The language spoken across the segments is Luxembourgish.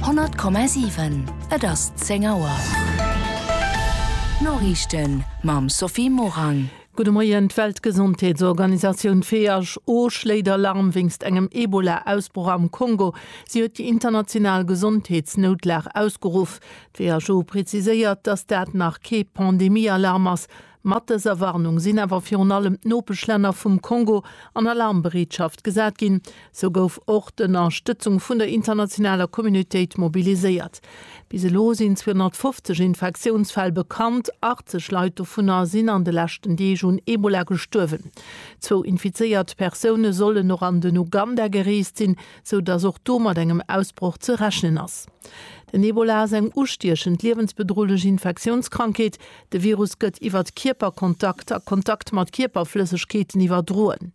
100,7 Et ass 10 Auer. D'Noriichten mam Sophie Morang. Gudde Moien, D'Weltgesondheetsorganisatioun, who, schléit Alarm wéinst engem Ebola-Ausbroch am Kongo. Si huet déi international Gesondheetsnoutlag ausgeruff. D'WHO preziséiert, datt dat nach kee Pandemie-Alarm ass, Mat dëser Warnung sinn awer virun allem d'Nopeschlänner vum Kongo an Alarmbereetschaft gesat ginn. Sou gouf och d'Ënnerstëtzung vun der internationaler Communautéit mobiliséiert. Bis elo sinn 250 Infektiounsfäll bekannt, 80 Leit dovunner sinn an de leschten Deeg un Ebola gestuerwen. Zwou infizéiert Persoune sollen och an den Uganda gereest sinn, sou datt och do mat engem Ausbroch ze rechnen ass. Den Ebola ass eng ustiechend, liewensbedrohlech Infektiounskrankheet, De Virus gëtt iwwert Kierperkontakt a Kontakt mat Kierperflëssegkeeten iwwerdroen.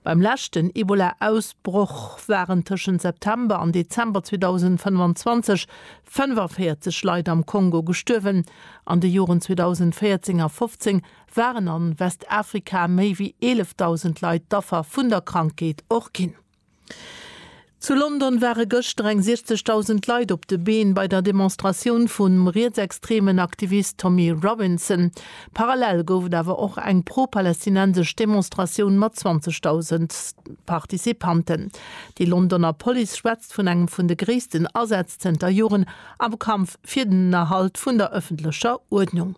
Beim leschten Ebola-Ausbroch waren tëschent September an Dezember 2025 45 Leit am Kongo gestuerwen. An de Joren 2014 a 15 waren an Westafrika méi wéi 11.000 Leit d'Affer vun der Krankheet och ginn. Zu London ware gëschter eng 60.000 Leit op de Been bei der Demonstratioun vum rietsextremen Aktivist Tommy Robinson. Parallel gouf et awer och eng pro-palästinensesch Demonstratioun mat 20.000 Participanten. Déi Londoner Police schwätzt vun engem vun de gréissten Asätz zënter Joren am Kampf fir den Erhalt vun der ëffentlecher Uerdnung.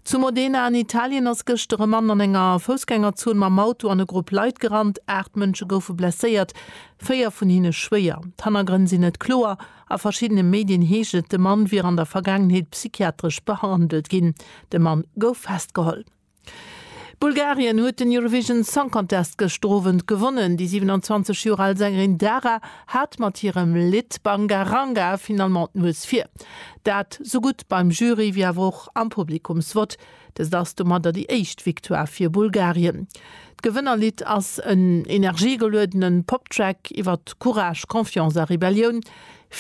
Zu Modena an Italien ass gëschter e Mann an enger Foussgängerzon mam Auto an e Grupp Leit gerannt. Aacht Mënsche goufe blesséiert, véier vun hinne schwéier. D'Hannergrënn sinn net kloer. A verschiddene Medien heescht et, de Mann wier an der Vergaangenheet psychiatresch behandelt ginn. De Mann gouf festgeholl. Bulgarien huet den Eurovision Song Contest gëschter Owend gewonnen. Déi 27 Joer al Sängerin Dara hat mat hirem Lidd Banga Ranga finalement d'Nues vir. Dat sou gutt beim Jury wéi awer och am Publikumsvott. Dëst ass domadder déi éischt Victoire fir Bulgarien. D'Gewënnerlidd ass en energiegeluedenen Pop-Track iwwer Courage, Confiance a Rebellioun.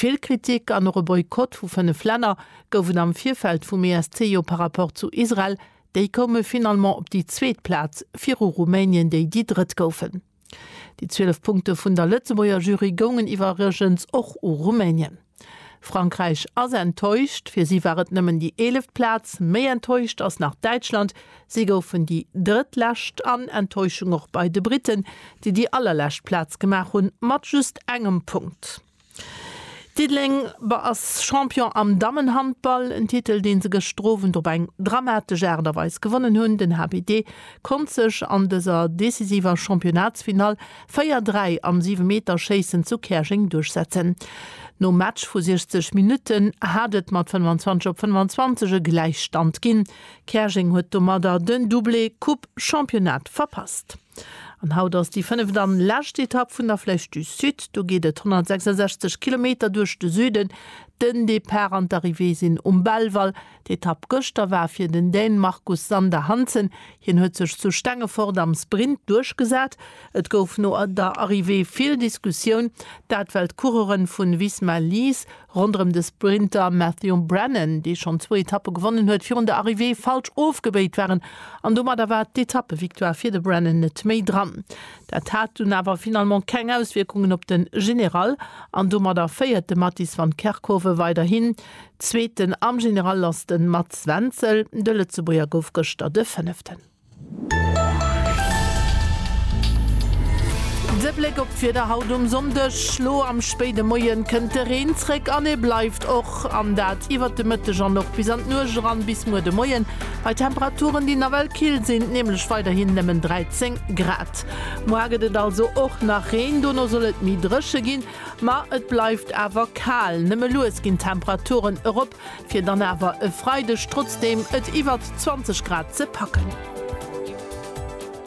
Vill Kritik an och e Boykott vu 5 Länner gouf et am Virfeld vum ESC jo par rapport zu Israel. Déi koume finalement op déi zweet Plaz, viru Rumänien, déi déi drëtt goufen. Déi 12 Punkte vun der Lëtzebuerger Jury goungen iwwerregens och u Rumänien. Frankräich ass enttäuscht, fir si war et nëmmen déi eeleft Plaz. Méi enttäuscht ass nach Däitschland, si goufen déi drëttlescht. An Enttäuschung och bei de Britten, déi déi allerlescht Plaz gemaach hunn, mat just engem Punkt. Diddeleng war ass Champion am Dammenhandball, en Titel deen se gëschter Owend op eng dramatesch Aart a Weis gewonnen hunn. Den HBD konnt sech an dëser decisiver Championnatsfinall 4, 3 am Siwemeterschéissen zu Käerjeng duerchsetzen. Nom Match vu 60 Minutten hat et mat 25 op 25 e Gläichstand ginn. Käerjeng huet domadder den Doublé Coupe Championnat verpasst. An haut ass déi fënneft an lescht Etapp vun der Flèche du Sud. Do geet et 166 Kilometer duerch de Süden. Den Depart an d'Arrivée sinn um Belval. D'Etapp gëschter war fir den Dän Marcus Sander Hansen. Hien huet sech zu Stengefort am Sprint duerchgesat. Et gouf no der Arrivée vill Diskussioun. Dat well d'Coureuren vun Visma Lease Ronderëm de Sprinter Matthew Brennan, dee schonn zwou Etappe gewonnen huet, virun der Arrivée falsch ofgebéit waren an domadder war d'Etappevictoire fir de Brennan net méi dran. Dat hat dunn awer finalement keng Auswierkungen op de General an domadder féiert de Mattis van Kerkhove weiderhin. Zweeten am General ass de Mats Wenzel. De Lëtzebuerger gouf gëschter de Fënneften. De Bléck op d'Wieder haut um Sonndeg, Elo am spéide Moie kënnt de Reen zréck an e bleift och, an dat iwwert de Mëtteg an och bis an d'Nuecht eran, bis muer de Moien bei Temperaturen, déi nawell kill sinn, nämlech weiderhin nëmmen 13 Grad. Mor gëtt et also och nach Reen, dono soll et méi dréche ginn, ma et bleift awer kal. Nëmme lues ginn d'Temperaturen erop, fir dann awer e Freideg trotzdeem et iwwert 20 Grad ze packen.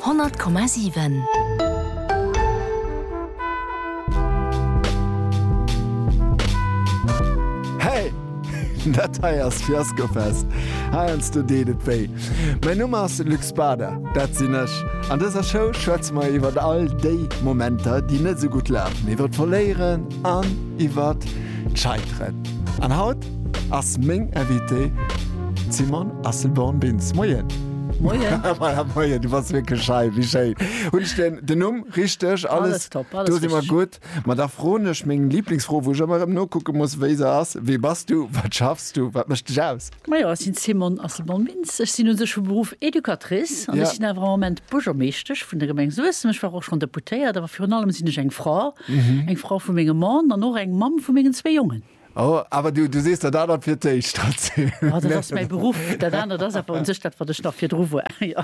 100,7. Hey! Dat hei ass Fiaskofest, heiansdo deet et wéi. Mäin Numm ass Luc Bader, dat sinn ech. An dëser Show schwätze mer iwwer all déi Momenter, déi net esou gutt lafen, iwwer d'Verléieren an iwwer d'Scheiteren. An haut ass meng Invitée d'Simone Asselborn-Bintz. Moien! Moien! Voilà, moien, du bass wierklech schei, wéi schéin. Hunn ech den, den Numm richteg? Alles, alles top, alles Do si mer gutt. Ma da froen ech meng Liblingsfro, wou ech ëmmer erëm nokucke muss, wéi se ass, Wie bass du? Wat schaffs du? Wat mécht dech aus? Majo, ech sinn Simone Asselborn-Bintz. Ech sinn u sech vu Beruff Educatrice an ech sinn awer am Moment Buergermeeschtesch vun der Gemeng Suessem. Ech war och schonn Deputéiert, awer virun allem sinn ech eng Fra, eng Fra vu mengem Mann an och eng Mamm vu mengen zwee Jongen. Oh, awer du, du sees dat anert fir d'éischt, Tracy. Jo, dat ass mäi Beruff. Dat anert ass awer u sech dat, wat ech nach virdru war, jo.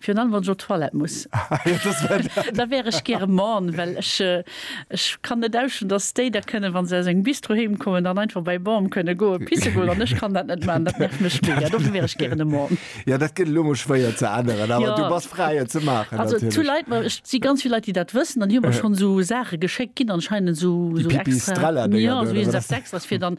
Virun allem wann ech op d'Toilette muss, da wär ech gäre Mann, well ech ech kann net ausstinn, datt déi da kënnen, wa se aus engem Bistro heem kommen, dann einfach bei Baume kënne goe pisse goen an ech kann dat net maachen. Dat nervt mech mega. Dofir wär ech gären e Mann. Jo, dat gëtt elo emol schwéier ze änneren, awer du bass fräi et ze maachen natierlech. Ech si ganz vill Leit déi dat wëssen an déi hu mer schonn esou Saache geschéckt ginn anscheinend, esou extra, jo esou eppes extras fir dann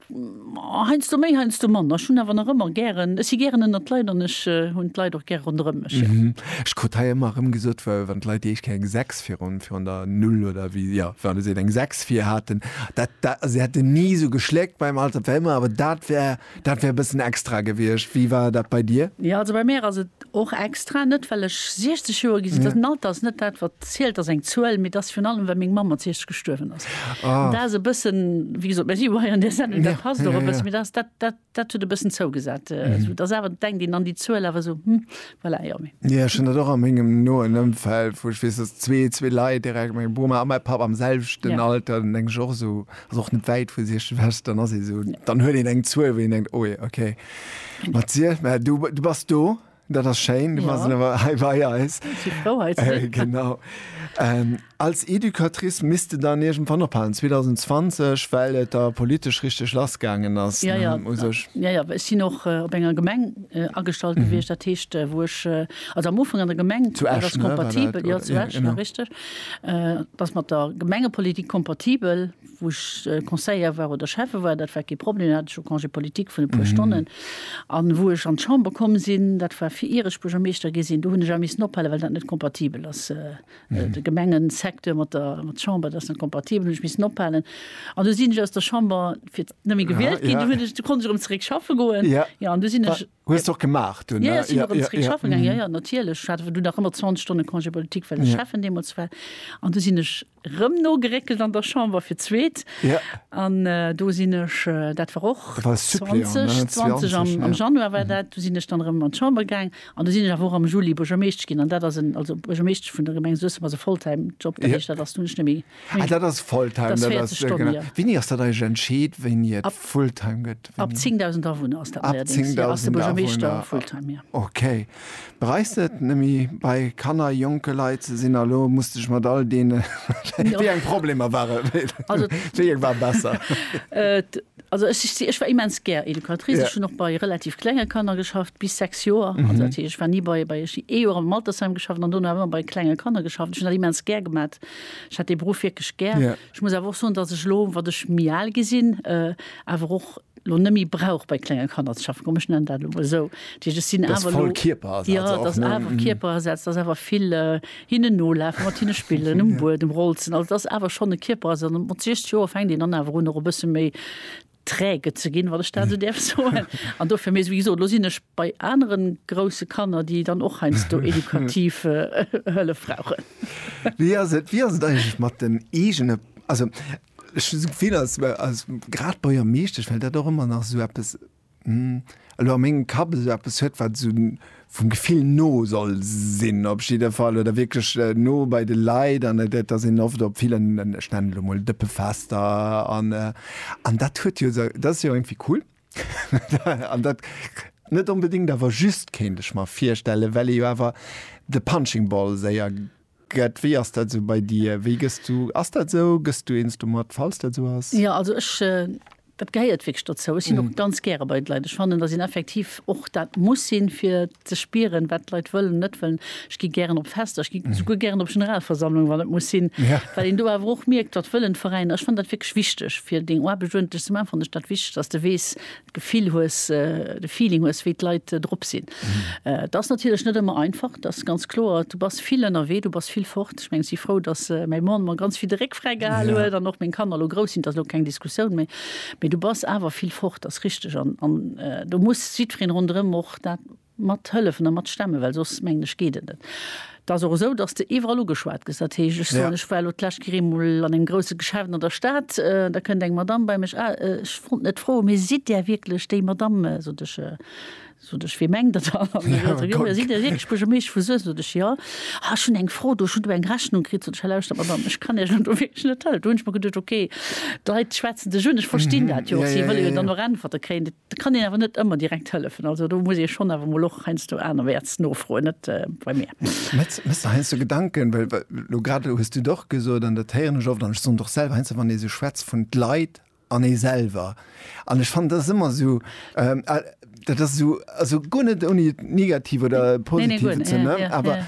Heiansdo méi, heiansdo manner. Ech hunn awer nach ëmmer gären, ech si gären ënnert d'Leit an ech hunn d'Leit och gär ronderëm mech, jo. Ech krut hei ëmmer erëm gesot, wa wann d'Leit déi éischt Kéier eng Sechs virun virun der Null oder wéi, jo, wa se eng Sechs vir haten, dat dat, se hätten ni esou geschléckt beim Alter, dat wär ëmmer, awer dat wär dat wär e bëssen extra gewiescht. Wéi war dat bei dir? Jo, also bei mär ass et Och extra net well ech 60 Joer ginn sinn. Den Alter ass net dat wat zielt, ass eng Zuel, mee et ass virun allem well meng Mamm mat 60 gestuerwen ass. An dat ass e bëssen, wéi gesot, mä si war hei an där Sendung, dat passt och e bëssen, mee dat ass, dat huet e bëssen zougesat. Et ass awer, denkt een an déi Zuel awer esou, hm, voilà, jo, mee. Jo, ech hunn dat och a mengem noen Ëmfeld, wou ech weess, dass zwee, zwee Leit direkt, meng Boma a mäi Papp am selwechten Alter, dann denk ech och esou, ass och net wäit vu 60, dann ass ee esou, dann huet een eng Zuel, wou een denkt, oh je, okay. Mathieu, mä du, du bass do. Dat ass schéin, du ja. bass awer hei bei eis. Äh, genau. Ähm, als Educatrice misste dann irgend van ophalen 2020, well et da politesch richtig lassgangen ass. Ja, ja, ja, ja, ich sinn och äh, op enger Gemeng äh, agestalt mhm. wiecht dat heescht äh, woch äh, also am Ufang an der Gemeng zu Esch, das kompatibel ne, ja, zu Esch, ja, richtig äh, das mat der Gemengepolitik kompatibel wou ech Conseiller war oder Schäffe war, dat war kee Problem, do hat ech jo Congé politique vun e puer Stonnen. A wou ech an d'Chamber komm sinn, dat war fir ier ech Buergermeeschter gi sinn, do hunn ech awer missen ophale well dat net kompatibel ass. De Gemengesecteur mat der Chamber, dat ass net kompatibel, hunn ech missen ophalen. An du sinn ech aus der Chamber fir net méi gewielt ginn, du hunn ech, du konnt ech erëm zeréck schaffe goen. Jo an du sinn ech. Hues de och gemaach dunn? Jo, jo, ech sinn erëm zeréck schaffe gaangen, jo, jo natierlech. Ech hat awer dunn nach ëmmer 20 Stonne Congé politique well ech Schäffen deemools war. An du sinn ech Rëm nogeréckelt an der Chamber fir d'zweet. An do sinn ech, dat war och 2020, am Januar war dat, do sinn ech dann erëm an d'Chamber gaang. An do sinn ech awer och am Juli Buergermeeschtesch ginn. An dat ass en, also Buergermeeschtesch vun der Gemeng Suessem ass e Volltime-Job, dat heescht, dat ass dunn net méi, ah dat ass Volltime, dat ass 40 Stonnen, jo. Wéini ass dat eigentlech entscheet, wéini et Fulltime gëtt? Ab 10.000 Awunner ass dat neierdéngs, jo, ass de Buergermeeschter Fulltime, jo. Okay. Bereist et nemme bei Kanner, jonke Leit ze sinn? A lo musste ech mat all deene wéi eng Problemer ware wéi eng war besser? Also ech war immens gär Educatrice. Ech hunn och bei relativ klenge Kanner geschafft, bis 6 Joer. Also dat heescht ech war ni bei, bei ech hunn ee Joer am Altersheim geschafft an dono awer ëmmer bei klenge Kanner geschafft. Ech hunn dat immens gär gemat. Ech hat dee Beruff wierklech gär. Ech muss awer och soen, datt ech elo, wat ech méi al gi sinn, awer och lo nemmi brauch bei klenge Kanner ze schaffen, komm ech nennen dat lo esou, Tisch ech sinn awer lo ja dass awer Kierperasaz, dass awer vill hinnen nolafen, mat hinne spillen, um Buedem rolzen, also dass awer schonn e Kierperasaz an mat 60 Joer fänkt een dann awer un och e bësse méi träge ze ginn, wann ech dat esou däerf soen, an dofir, mee wéi gesot, lo sinn ech bei anere grousse Kanner, déi dann och heiansdo edukativ Hëllef brauchen. Wéi ass et, wéi ass et eigentlech mat den eegene, also Ech hu d'Gefill, als, als grad Buergermeeschtesch, well dat och ëmmer nach esou eppes, hm, elo a mengem Kapp esou eppes huet, wat esou vum Gefill no soll sinn op jidde Fall oder wierklech no bei de Leit an et, et ass een oft op villen, ech nennen et elo mol Dëppefester an, an dat huet jo esou, dat ass jo iergendwéi cool an dat net onbedéngt awer just, kéint ech mer virstellen, well ee jo awer de Punching Ball séier. Gëtt, wéi ass dat esou bei dir? Wéi gëss du, ass dat esou, gëss du eens domat, falls dat esou ass? Jo, also ech, dat gehéiert wierklech dozou. Ech sinn och ganz gäre bei de Leit. Ech fannen, dass een effektiv och dat muss sinn, fir ze spieren, wat d'Leit wëllen an net wëllen. Ech gi gären op Fester, ech gi souguer gären op Generalversammlungen, wann et muss sinn, well een do awer och mierkt, wat wëllen d'Veräiner. Ech fannen dat wierklech wichteg, fir deng Aarbecht uerdentlech ze maachen, fannen ech dat wichteg, dass de weess, D'Gefill hues, de Feeling hues, wéi d'Leit drop sinn. Et ass natierlech net ëmmer einfach, dat ass ganz kloer. Du bass vill ënnerwee, du bass vill fort. Ech meng, si frou, datt mäi Mann mer ganz vill de Réck fräi gehal huet an och meng Kanner elo grouss sinn. Dat ass elo keng Diskussioun méi. Mee du bass awer vill fort, dat ass richteg. An do muss jiddweree ronderëm och dat. mat hëllefen a mat stemmen, well soss mengen ech geet et net. Et ass och esou, datt s de iwwerall ugeschwat gëss. Dat heescht, ech soen, ech war elo d'lescht Kéier eemol an engem grousse Geschäft an der Stad, da kënnt eng Madamm bei mech, Ah, ech wollt net froen, mee sidd Där wierklech déi Madamm, sot ech, sot ech, wee mengt Der dann? An da seet se, Jo, sidd Dir wierklech Buergermeeschter vu Suessem? Sot ech, Jo. Ah, ech hunn eng Fro do, ech hunn do eng Rechnung kritt. Sot ech, Ha lauschtert, Madamm, ech kann Iech elo do wierklech net hëllefen. Do hunn ech mer geduecht, Okay, d'Leit schwätzen dech un, ech verstinn dat jo och, si wëlle jo dann och Äntwerte kréien. Da kann een awer net ëmmer direkt hëllefen. Also do muss ee schonn awer emol och heiansdo anerwäerts nofroen, net bei mir. Metz, Méchs der heiansdo Gedanken, well elo grad elo hues du et och gesot an dat héieren ech oft an ech soen et och selwer, heiansdo wann ee sou schwätzt vun d'Leit an ee selwer an ech fannen, dat ass ëmmer esou, dat ass esou, also guer net ouni et negativ oder positiv ze. Awer.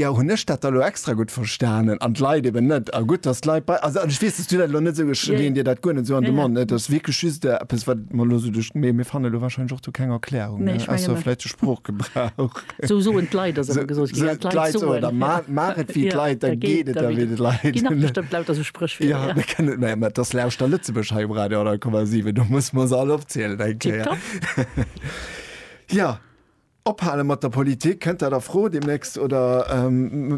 Jo, hunn ech dat da lo extra gutt verstanen an d'Leit eben net? A gutt, datt d'Leit bei, also, an ech weess, datt s du dat elo net esou, ech leeën dir dat guer net esou an de Mond, et ass wierklech just eppes, wat et mer elo esou duerch, mee mir fannen elo warscheinlech och do keng Erklärung, ne, ausser vläicht de Sproochgebrauch. Esou soen d'Leit, ass ëmmer gesot ginn, ja, d'Leit soen. Oder maach, maach et wéi d'Leit, da geet et da wéi de Leit. Ginn och bestëmmt lauter esou Spréchwierder. Jo, mir kënnen, mä et ass Lauschter Lëtzebuerg hei um Radio 100,7, do musse mer se all opzielen eng Kéier. Tipptopp. Jo. Ophale mat der Politik, kënnt dat a Fro deemnächst oder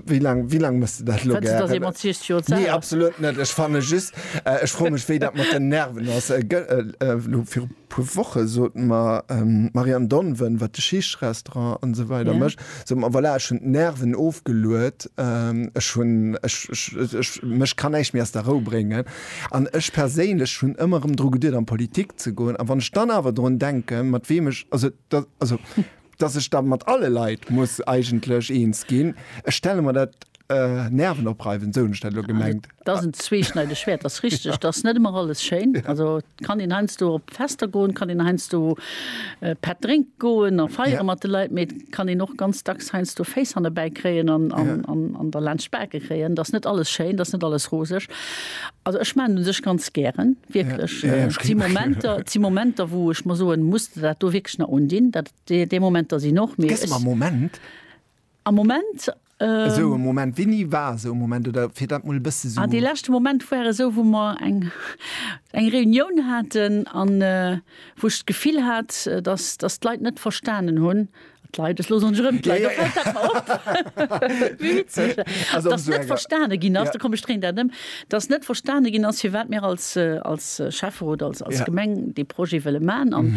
wéi laang, wéi laang muss de dat elo gären? Fënns de, datt ee mat 60 Joer z'al ass? Nee, absolut net. Ech fanne just, ech froe mech, wéi dat mat den Nerven ass. Elo viru puer Woche sot mer d'Marianne Donven, wat de Schiichtsrestaurant an esou weider mécht, sot mer, voilà, ech hunn d'Nerven ofgeluet, ech hunn, ech, mech kann näischt méi aus der Rou bréngen. An ech perséinlech hunn ëmmer erëm dru geduet an d'Politik ze goen. A wann ech dann awer drun denken, mat weem ech, also, Dat, also, dass ech da mat alle Leit muss eigentlech eens ginn, ech stelle mer dat äh, nervenopreiwend, esou hunn ech dat elo gemengt. Dat ass en zweeschneideg Schwäert, dat ass richtig. Dat ass net ëmmer alles schéin. Also kann een heiansdo op Fester goen, kann een heiansdo äh, Pätt drénke goen a feiere Ja. mat de Leit, mee et kann een och ganz dacks heiansdo Féiss hannebäi kréien an, an, Ja. an, an derlaanscht d'Bake kréien. Dat ass net alles schéin, dat ass net alles roseg. Also ech maachen un sech ganz gären. Wierklech, et si Momenter, et si Momenter, wou ech mer soen, muss de dat do wierklech nach undinn? Dat, déi, déi Momenter sinn och, mee Gëss ech. mer e Moment, Am Moment, esou e Moment, wéini war esou e Moment, oder fir dat mol e bësse sou. ah, dee leschte Moment war esou, wou mer eng, eng Reunioun haten an wou ech d'Gefill hat, dass, dass d'Leit net verstanen hunn, Leit es losen rëm verstane ginn ass, da kom streng dat ëm, dats net verstane ginn ass, fir wat mir als als Schäffer oder als als Gemeng dee Projet wëlle man an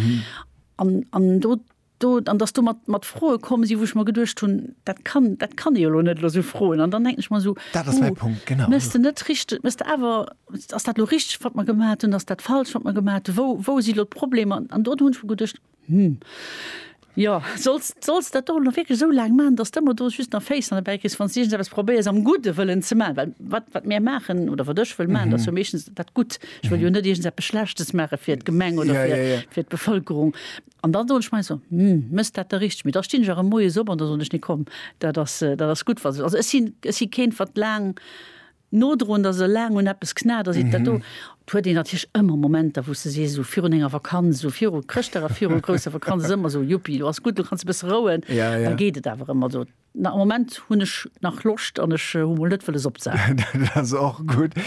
an an do do an dass do mat mat froe kommen si, wou ech mer geduecht hunn, dat kann dat kann ee jo lo net lo sou froen an dann denken ech mer sou, hu mes de net richteg mes de awer ass dat lo richteg wat mer gemat hunn, ass dat falsch wat mer gemat hunn, wou wou si lo d'Problemer an do hunn ech mer geduecht, Hm. Jo, solls, solls dat och nach wierklech esou laang maachen, dass s de mer do just nach Féiss an de Bäi kriss, wann s de iergendepes probéiers am gudde Wëllen ze maachen. Well wat, wat mir maachen oder wat ech wëll maachen, dat ass jo meeschtens dat Gutt. Ech wëll jo net iergendepes Schlechtes maache fir d'Gemeng oder fir, fir d'Bevëlkerung. An dann soen ech mei esou, hm, mëss dat da richteg? Mee da stinn ech erëm moies op an da soen ech, nee komm, dat ass, dat ass gutt, wa se. Also ech sinn, ech si keen, wat laang nodroend ass, esou laang un eppes knat ass, dat do, et huet een natierlech ëmmer Momenter, wou s de sees, esou virun enger Vakanz, esou viru Chrëschtdag a viru grousser Vakanz ass ëmmer esou, Juppi, lo ass gutt, lo kanns de e bësse rouen, da geet et awer ëmmer esou, na am Moment hunn ech nach Loscht an ech hu mol net wëlles opzehaalen. Dat ass och gutt.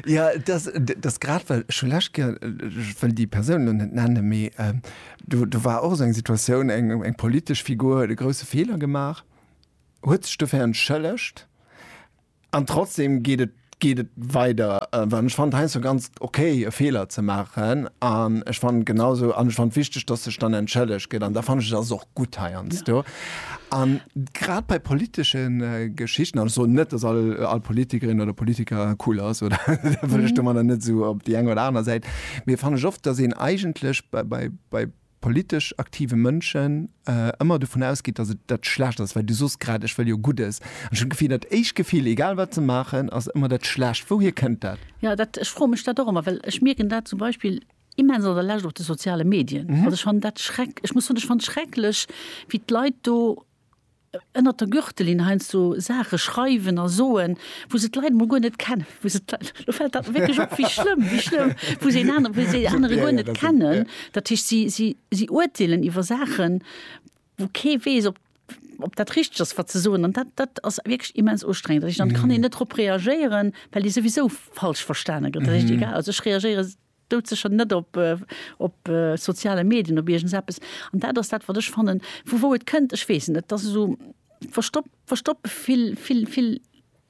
Jo, et ass, et ass grad, well ech hu lescht Kéier, ech wëll déi Persoun elo net nennen, mee do war och esou eng Situatioun, eng politesch Figur huet e grousse Feeler gemaach, huet sech dofir entschëllegt an trotzdem geet et geet et weider well ech fand heiansdo ganz ok e Feeler ze maachen an ech fand genau esou an ech fand wichteg dass sech dann entschëllegt gëtt an da fand ech et ass och gutt heiansdo an grad bei politesche Geschichten an ech soen net dass all all Politikerin oder Politiker cool ass oder da wëll ech domadder net esou op déi eng oder aner Säit mee fand ech oft dass een eigentlech bei bei bei politesch aktive Mënschen ëmmer dovun ausgeet, datt et dat Schlecht ass, well du sos grad, ech wëll jo Guddes. An ech hunn d'Gefill, dat éischt Gefill, egal wat se maachen, ass ëmmer dat Schlecht. Wouhier kënnt dat? Jo, dat, ech froe mech dat och ëmmer, well ech mierken dat zum Beispill immens an der Lescht op de soziale Medien. Also ech fannen dat schreck, ech muss soen, ech fannen et schrecklech, wéi d'Leit do ënnert der Gürtellinn heiansdo Saache schreiwen a soen, wou se d'Leit emol guer net kennen, wou se d'Leit, lo fält dat mer wierklech op, wéi schlëmm, wéi schlëmm, wou se een anere, wou se een anere guer net kennen. Dat heescht, si, si, si urteelen iwwer Saachen, wou kee weess, ob, ob dat richteg ass, wat se soen. An dat, dat ass wierklech immens ustrengend. Dat heescht, dann kann een net drop reagéieren, well ee souwisou falsch verstane gëtt. Dat heescht, egal, also ech reagéiere. dout sécher net op op soziale Medien, op iergends eppes, an dat ass dat wat ech fannen, vu wou et kënnt, ech weess et net, et ass esou verstoppt, verstoppt vill, vill, vill,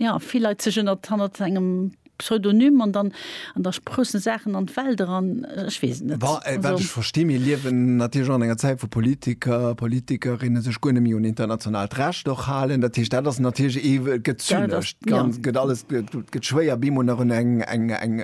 jo vill Leit sech ënnert, hannert engem Pseudonym an dann, an da sproussen Saachen an d'Welt eran, ech weess et net. Bon, wat ech versti, mir liewen natierlech och an enger Zäit wou Politiker, Politikerinne sech guer net méi un internationaalt Recht och halen, dat heescht dat ass natierlech ee, et gëtt zynesch, et gëtt alles, et gëtt schwéier bemol nach un eng, eng, eng.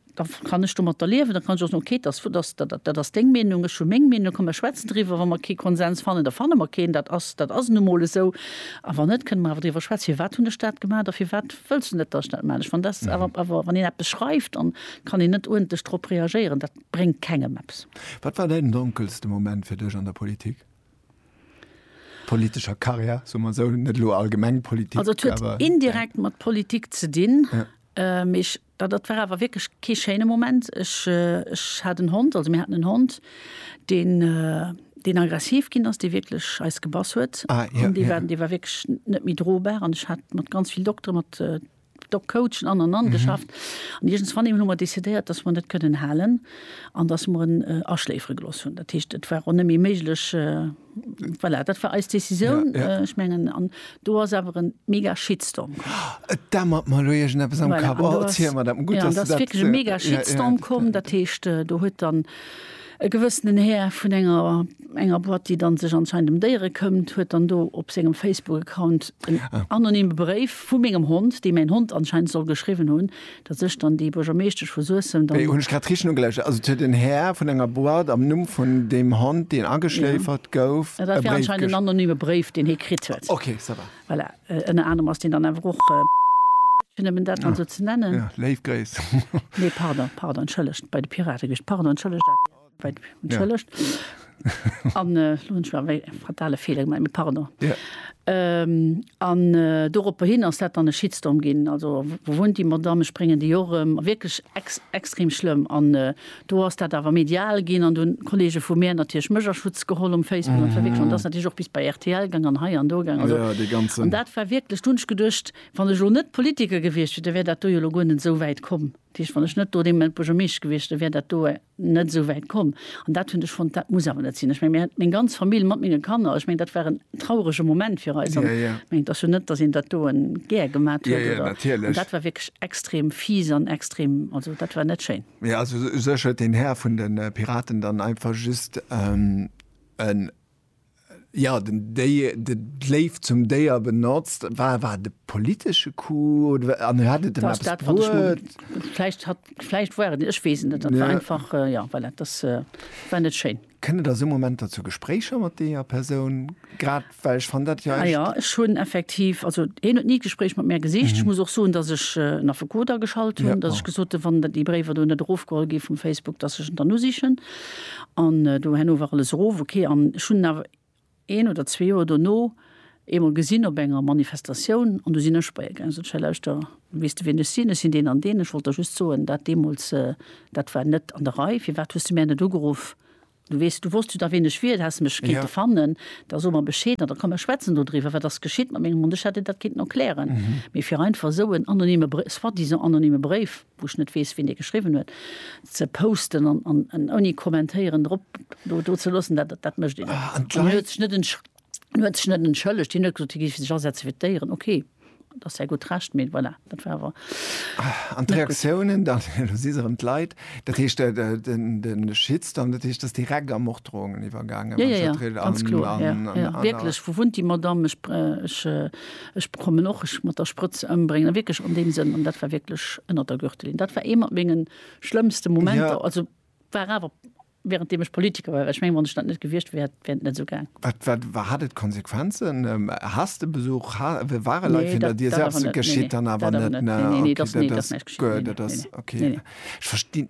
Da kann ech domatter liewen, da kann ech och soen, okay, dass, dass, dat, dat ass deng Meenung, ech hu meng Meenung, da komme mer schwätzen driwwer. Wa mer kee Konsens fannen, da fanne mer keen, dat ass, dat ass nu mol esou. A wann net, kënne mer awer driwwer schwätzen, firwat hunn ech dat gemaach a firwat wëlls du net, dass ech dat maachen. Ech fannen, dat ass awer, awer wann een eppes schreift, dann kann een net uerdentlech drop reagéieren, dat bréngt kengem eppes. Wat war däin donkelste Moment fir dech an der Politik, politescher Karriär, soe mer esou, net elo allgemeng Politik, awer. Also et huet indirekt mat Politik ze dinn, mee ech. Da dat war awer wierklech kee schéine Moment. Ech, ech hat en Hond, also mir haten en Hond, deen, deen aggressiv ginn ass, dee wierklech eis gebass huet. An dee war, dee war wierklech net méi drobar. An ech hat mat ganz vill Doktere, mat Dog-Coachen an an an geschafft. An iergendswann deemol hu mer decidéiert, datt mer en net kënnen halen an datt mer en aschléifere gelooss hunn. Dat heescht, et war och net méi méiglech, Voilà, dat war eis Décisioun. Ja, ja. Ech mengen, an do ass awer e mega Shitstorm komm. Et dämmert mer elo iergendeppes am Kapp. Voilà, oh, erziel mer dat. Gutt, ja, dass du dat. Ass wierklech e mega Shitstorm ja, ja, komm. Dat heescht, äh, do huet dann e gewëssenen Här vun enger, enger Boîte, déi dann sech anscheinend em Déiere këmmt, huet dann do op sengem Facebook-Account en ah. anonyme Bréif vu mengem Hond, dee mäin Hond anscheinend soll geschriwwen hunn, Dat sech dann déi Buergermeeschtesch vu Suessem dann. Hunn ech grad richteg nogeluschert. Also et huet en Här vun enger Boîte am Numm vun deem Hond, deen ageschléifert gouf, e Bréif. Dat war anscheinend en anonyme Bréif, deen hie kritt huet. Ok, ça va. Voilà. Ënner anerem ass deen dann awer och BR gewiescht, fir nëmmen dat dann esou ze nennen. Léif Gréiss. Nee, pardon, pardon, entschëllegt. Bei de Pirate gewiescht. Pardon, entschëllegt, ADR. Entschëllegt. An elo hunn ech awer e fatale Feeler gemaach, mee pardon. An doropperhin ass dat dann e Shitstorm ginn, also wou wunnt déi Madamm, ech bréngen déi och erëm, wierklech extrem schlëmm. An do ass dat awer medial ginn an do hunn d'Kolleege vu mär natierlech mech a Schutz geholl um Facebook an verwickelt an dat ass natierlech och bis bei rtl gaang an hei an do gaang. Also an dat war wierklech, do hunn ech geduecht, wann ech elo net Politiker gewiescht wier, da wär dat do jo elo guer net esou wäit komm. Dat heescht, wann ech net do dee Moment Buergermeeschter gewiescht, da wär dat do net esou wäit komm an dat hunn ech fonnt, dat muss awer net sinn. Ech meng, mir hat meng ganz Famill mat menge Kanner, ech meng, dat war en traurege Moment fir eis. Ech meng, et ass jo net, datt een dat doen gär gemat huet oder. Dat war wierklech extrem fies an extrem, also dat war net schéin. Mee also u sech huet den Här vun de Piraten dann einfach just en Jo, den Déier, de Gléif zum Déier benotzt. War, war et e politesche Coup oder, an hat et ëm eppes bruet? Vläicht hat, vläicht war et, ech weess et net. Dat war einfach, jo, voilà, dass, war net schéin. Kënnt et a sou Momenter zu Gespréicher mat deeër Persoun? Grad well ech fann dat jo echt. Jo, ech hunn effektiv, also hien huet ni d'Gespréich mat mär gesicht. Ech muss och soen, dass ech en Affekot ageschalt hunn, dass ech gesot hunn, wann déi Bréiwer do net erofgeholl gi vum Facebook, dass ech en dann usichen. An do herno war alles erof, ok. An ech hunn en awer een oder zwee Joer dono eemol gesinn op enger Manifestatioun an do sinn ech bei e gaangen. Sot ech, Hei lauschter, weess de wien ech sinn? Ech sinn deen an deen, ech wollt der just soen, dat deemools, dat war net an der Rei. Firwat hues de mär net ugeruff? Du weess, du wosst jo da wien ech wier, du häss mech kéinte fannen. Da so mer Bescheed an da komm mer schwätzen dodriwwer, wat ass geschitt mat mengem Hond? Ech hätt dir dat kéinten erklären, mee fir einfach esou en anonyme Bréif, soi-disant anonyme Bréif, wou ech net weess wien dee geschriwwen huet, ze posten an, an, an ouni kommentéieren drop do, do ze loossen, dat, dat mécht een net. An d'Leit. Hien huet sech net entsch, hien huet sech net entschëllegt, hien huet gesot, hie géif sech asetze fir d'Déieren, okay, dat ass säi gutt Recht, mee voilà, dat war awer. An d'Reaktiounen dann, elo si se erëm d'Leit, dat heescht de, de, den, de Shitstorm, dat heescht, ass direkt a Morddroungen iwwergaangen, Ja, ja, ja, ganz kloer, ja, ja, wierklech, wou wunnt déi Madamm, ech, ech, Ech bekommen och, ech mat der Sprëtz ëmbréngen, wierklech an deem Sënn, an dat war wierklech ënnert der Gürtellinn. Dat war ee mat menge schlëmmste Momenter. Ja. Also war awer während deem ech Politiker war, well ech mengen, wann ech dat net gewiescht wär, hätt, wär et net esou gaang. Wat, wat war, hat et Konsequenzen? Ähm, Hass de Besuch? Ha, w- waren Leit Nee, hinter dat, dir? dat awer Selbst net. Nee, geschitt nee, dann awer dat awer net. net. Nee, nee, nee, okay, dat, dat nee, dat ass, näischt geschitt. guer, Nee, dat nee, ass, nee, nee. okay. Nee, nee. Ech verstinn,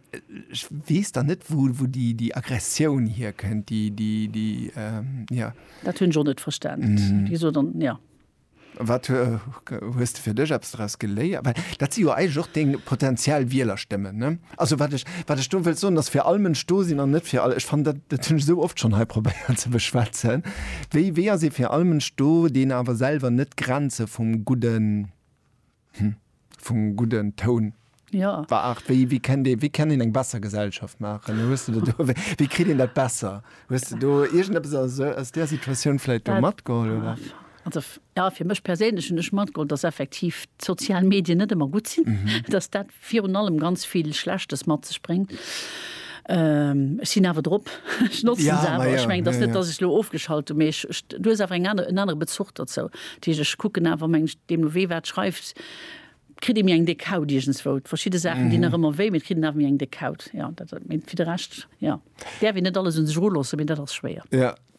ech weess dann net, wou, wou déi, déi Aggressioun hierkënnt, déi, déi, déi, ähm, ja. Dat hunn ech och net verstanen. Mm -hmm. Wieso dann, ja. Wat hues du fir dech abs daraus geléiert? Well dat si jo eig och deng potenziell Wieler stëmmen ne? Also wat ech, wat ech do wëll soen, ass fir all Mënsch do sinn an net fir all. Ech fan dat dat hunn ech sou oft schonn hei probéiert ze beschwätzen. Wéi wéi ass ee fir all Mënsch do, deen awer selwer net d'Grenze vum Gudden. Hm, vum gudden Toun. Jo. War Art, wéi, wéi kennt ee, wéi kennt een eng besser Gesellschaft maachen? Hues de do, do, wéi, wéi kritt een dat besser? Hues de do iergendeppes aus esou, aus där Situatioun vläit do Dat- matgeholl, oder? Ah, Also, f- ja, fir mech perséinlech hunn ech matgeholl, dass effektiv d'sozial Medien net ëmmer gutt sinn, dass dat virun allem ganz vill Schlechtes mat sech bréngt. Ech sinn awer drop, ech notzen se awer. Ech mengen, et ass net, datt ech elo ofgeschalt hunn, mee du hues awer en anere Bezuch dozou. Dat heescht, ech kucken awer, meng ech, deemno wee wat schreift, kritt ee méi eng déck Haut iergendswou. Verschidde Saachen dinn nach ëmmer wéi, mee et kritt een awer méi eng déck Haut. Jo, dat, mee fir de Rescht, jo, däerf een net alles un sech eruloossen, mee dat ass schwéier.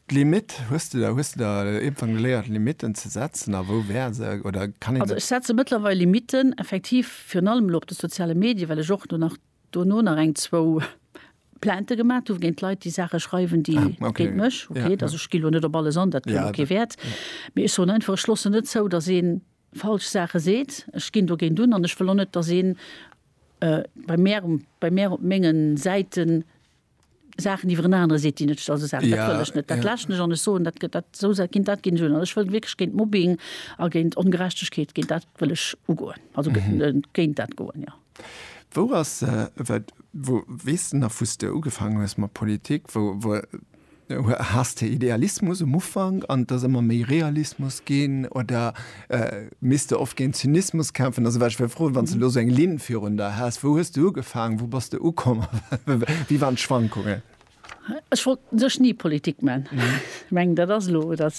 D'Limit, hues de der, hues de der iergendwann geléiert Limitten ze setzen a wou wär se, oder kann een Also dat? ech setze mëttlerweil Limitten, effektiv, virun allem elo op de soziale Medie, well ech och do nach, dono nach eng, zwou Plaintë gemat hu géint Leit, déi Saache schreiwen, déi Ah, okay. géint mech, Ja, okay, also ja. ech ginn elo net op alles an, dat huet Ja, elo kee dat, Wäert, ja. mee ech soen einfach, ech loossen net zou, datt ee falsch Saache seet, ech ginn dogéint un an ech wëll och net, datt een bei mär um, bei mär op mengen Säiten Saachen iwwer en anere seet, déi net sti-, also Saachen, dat wëll ech net, dat läschen ech an ech soen, dat gëtt dat, esou Sa-, ginn, dat ginn ech un an ech wëll wierklech géint Mobbing a géint Ongerechtegkeet, géint dat wëll ech ugoen, also gét-, géint dat goen, jo. Wou ass, wat, wou, weess de nach, wou s de ugefaangen hues mat Politik, wou, wou, Has de Idealismus um Ufank an et ass ëmmer méi Realismus ginn oder misst de oft géint Zynismus kämpfen? Also wat ech wëll froen, wann s de elo esou eng Linn virun der häss, wou hues de ugefaangen, wou bass de ukomm a wéi waren d'Schwankungen? Ech wollt u sech ni Politik man. Ech mengen dat ass elo, dat.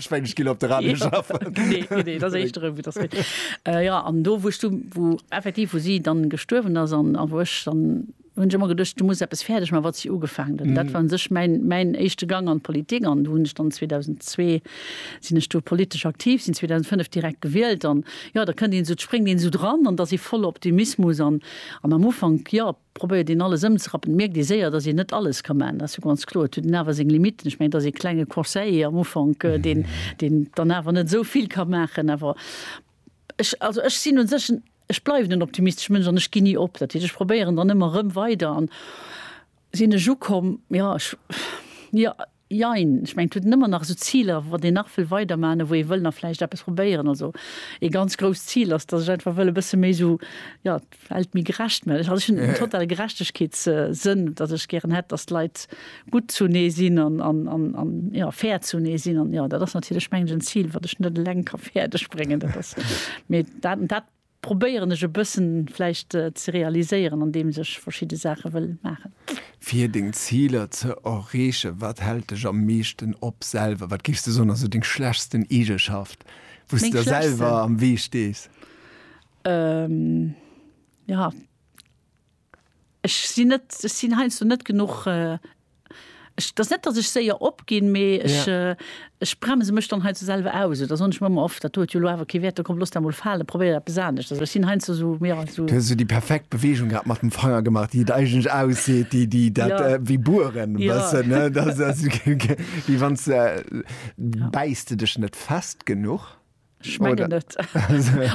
Ech meng ech ginn op de Radio schaffen. Nee, nee, nee, dat éischt erëm, wou dat wéi. Äh, ja, an do, wou ech du, wou effektiv, wou si dann gestuerwen ass an, a wou ech dann hunn ech ëmmer geduecht, du muss eppes fäerdeg man, wat si ugefaangen huet. An dat war un sech mäin, mäin éischte Gang an d'Politik. An do hunn ech dann 2002 sinn ech do politesch aktiv, sinn 2005 direkt gewielt. An, jo, da kënnt een esou, spréngt een esou dran an et ass ee voller Optimismus. An, an am Ufank, jo, probéiert een alles ëmzerappen, mierkt ee séier, datt een net alles ka maachen, dat ass jo ganz kloer. Et huet een awer seng Limitten. Ech mengen, et ass ee klenge Conseiller am Ufank, deen, deen dann awer net esou vill ka maachen. Awer ech, also ech sinn un sech en, ech bleiwen en optimistesche Mënsch an ech ginn ni op. Dat heescht, ech probéieren dann ëmmer erëm weider an sinn ech ukomm, jo, ech, jo. Jein, ech mengen et huet een ëmmer nach esou Ziler, wat een nach wëll weiderman a wou ee wëll nach vläicht eppes probéieren. Also ee ganz grousst Zil ass, datt ech einfach wëll e bësse méi esou, jo, d'Welt méi gerecht man. Also ech hunn en totale Gerechtegkeetssënn, datt ech gären hätt, datt d'Leit gutt zunee sinn an, an, an, jo, fair zunee sinn. An jo, dat ass natierlech, mengen ech, en Zil, wat ech net eleng ka fäerdeg bréngen. Dat ass, mee dat, dat. probéieren ech e bëssen vläicht ze realiséieren an deems ech verschidde Saache wëll maachen. Fir deng Ziler ze erreechen, wat hält dech am meeschten op selwer? Wat géifs de soen ass sou deng schlechtsten Eegeschaft, wou s de der selwer am Wee stees? Meng schlechtsten? Jo, Ech sinn net, ech sinn heiansdo net genuch, ech, dat ass net, datt ech séier opginn, mee ech, ech bremse mech dann heiansdo selwer aus. Oder soen ech mer ëmmer, och dat do huet jo elo awer kee Wäert, da komm, looss dat emol falen, probéier eppes anescht. Also ech sinn heiansdo esou, jo, esou. Du hues esou déi perfekt Beweegung grad mat dem Fanger gemaach, déi et eigentlech ausseet, déi, déi dat, wéi bueren e bëssen, ne? Dat ass, wéi wann s de, bäiss de dech net fest genuch? Ech mengen net.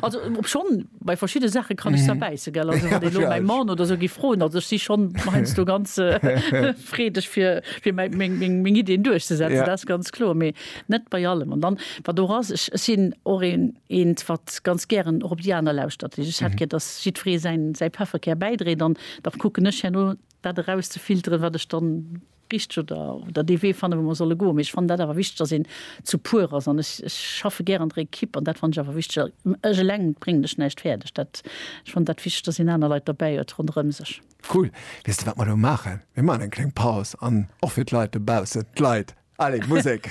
Also obschonn bei verschidde Saache kann ech zerbäisse, gell. Also wann elo mäi Mann oder esou géif froen, also ech si schonn heiansdo ganz freedeg fir meng Iddien duerchzesetzen, dat ass ganz kloer, mee net bei allem. An dann wat och ass, ech sinn och eent wat ganz gären och op déi aner lauschtert. Ech hätt gär, datt jiddweree säin Pefferkär bäidréit an da kucken ech herno dat erauszefilteren, wat ech dann richteg oder oder dee Wee fannen, wou mer solle goen. Mee ech fannen dat awer wichteg, dass een zu puer ass. An ech, ech schaffe gär an der Ekipp an dat fannen ech awer wichteg. Ech eleng bréngen ech näischt fäerdeg. Dat, ech fannen dat wichteg, dass een aner Leit derbäi huet ronderëm sech. Cool. Weess de, wat mer elo maachen? Mir maachen eng kleng Paus an och fir d'Leit dobaussen, d'Leit, allez, Musek!